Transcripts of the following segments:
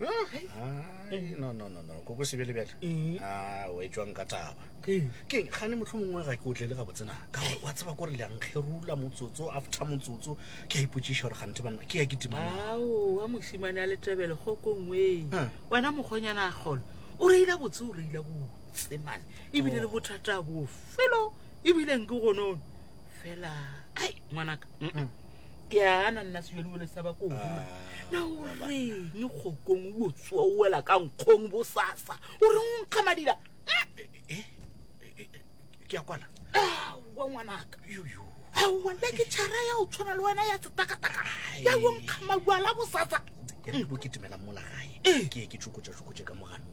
Ai, no no no no koko sebele bjale Ee. a o etswang ka taba Ee. keng gane motlho mongwe ga ke o tlele gabotsena ka gore wa tseba kore leankgerula motsotso after motsotso ke a ipotsiša gore gante banna ke ya ke dimana aowa mosimane a letebele kgokongweng Ah. wena mokgonyana a kgolo o reile botse o reile botse mane ebile le bothata bofelo ebile nke gonono fela ai ngwanaka mm, mm. ke a gana nna sejolebole sa ba koo ah, na o reng kgokong o botsoa o wela ka nkgong bosasa o reng o nkga madila eh, eh, eh, ke a kwana aowa ngwanaka aowa le ke tšhara ya o tshwana le wena ya setakataka ya o nkga maduala bosasa ke re bo ke timela mola gae ke ke tšokotša tšokotše ka mogano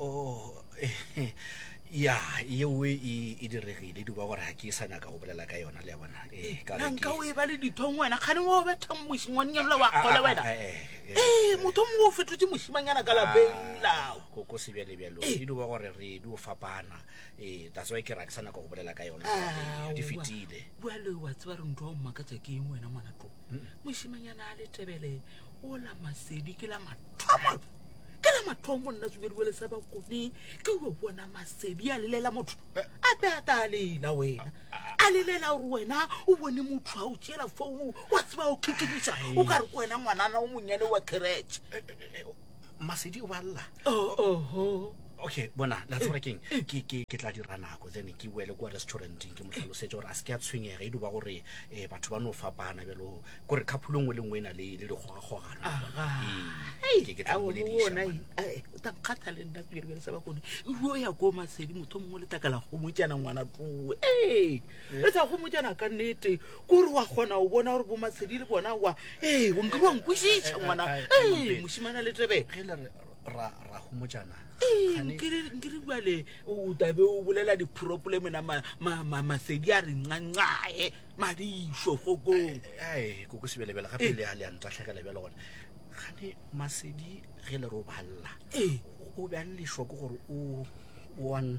oh ya yeo e e diregile duba gore ga ke sa nyaka go bolela ka yona le ya bona eh, ka re ke- nanka o e ba le dithong wena kgane o betha mošingwannyana wa Ah, kgole ah, wena ah, eh, eh, ee motho mongwe o fetotse mošimanyana ka lapeng lao Ah, ko ko sebjalebjalo Eh. e duba gore re di o fapana ee that's why ke ra ke sa nyaka go bolela ka yona Aowa. di fetile bjale wa tseba re ntho wa mmakatsa ke eng wena ngwana tlo mošimanyana a letebele o la masedi ke la mathomo ke la mathomo nna tsubediwe le sa ba kone ke o bona masedi a lelela motho eh. a be a ta lela wena a lelela gore wena o bone motho a o tšela founu wa tseba o khekekiša o ka re ko wena ngwanana o monnyane wa kereke eh, eh, masedi o ba lla oh, oh, oh. okay bona la tsora keng eh, eh. ke ke ke tla dira nako then ke boele kwa restauranteng ke mo tlhalosetse gore a se ke a tshwenyega e duba gore um batho ba no fapana bjalo gore kgaphulo nngwe le nngwe e na le le dikgogakgogano takgata le nna pele bjale sa ba kone ruo ya ko masedi motho mongwe le takala gomotjana ngwana tloe ee re tsa gomotjana ka nnete kore wa kgona o bona gore bomatshedi le bona wa ee o nkile wa nkwešiša ngwana ee mošimana le tebele nkere bale o tabe o bolela dipropole mena masedi a re ncancae madišo kgokong koko sebelebele gape eh. le a le a ntatlhegele bjale gone gane masedi ge le re o balela ee. o be a le lešoko gore o one